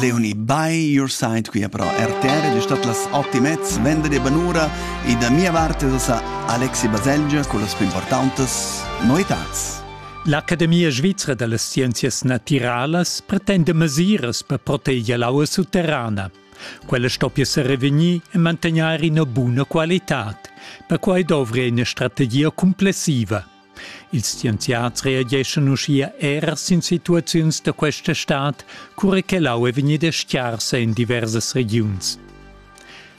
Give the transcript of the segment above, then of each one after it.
Leonie by your side qui però RTR ed è stat las ottimets venderdi banura e da mia parte da sa Alexi Baselgia con las più importantes novitats. L'Academia svizra da las scienzias natiralas pretende mesiras per proteger l'aua sutterrana. Quella stoppia sa revegnir e mantegnair ina buna qualità. Perquai dovri ina strategia complessiva. Ils scienziads reageschan uschia er sin situaziuns da questa stad, cura che l'aua è vegnida scarsa en diversas regiuns.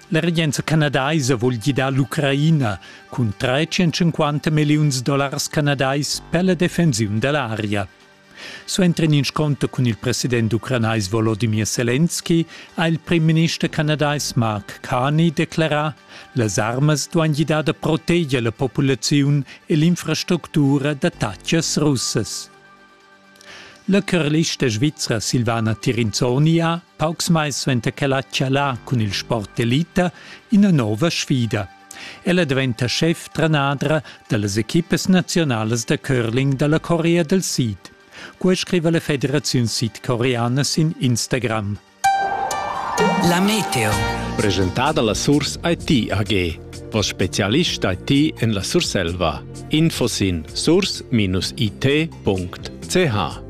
La regenza canadaisa vul gidar l'Ucraina cun 350 milliuns dollars canadais per la defensiun da l'aria. Suenter in inscunter cun il president ucranais Volodymyr Selenski ha il primminister canadais Mark Carney declerà las armas duain gidar da proteger la populaziun e l'infrastructura d'attatgas russas. La curlista svizra Silvana Tirinzoni ha, paucs mais suenter ch'ella ha chalà cun il sport elita, ina nova sfida – Ella daventa schef trenadra dallas equipas naziunalas da curling dalla Corea del Sid. Quei scriva la Federaziun Sidcoreana sin Instagram. La Meteo. Presentada la Surs IT AG. Vos specialist IT en la Surselva. Info sin surs-it.ch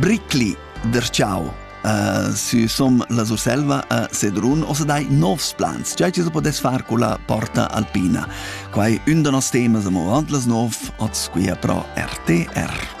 Bricli derciau uh, si som la Surselva a Sedrun o se dai novs plans. Giai ti so podes far con la porta alpina. Quai un da nos temas amo avant las 9, oz qui a pro RTR.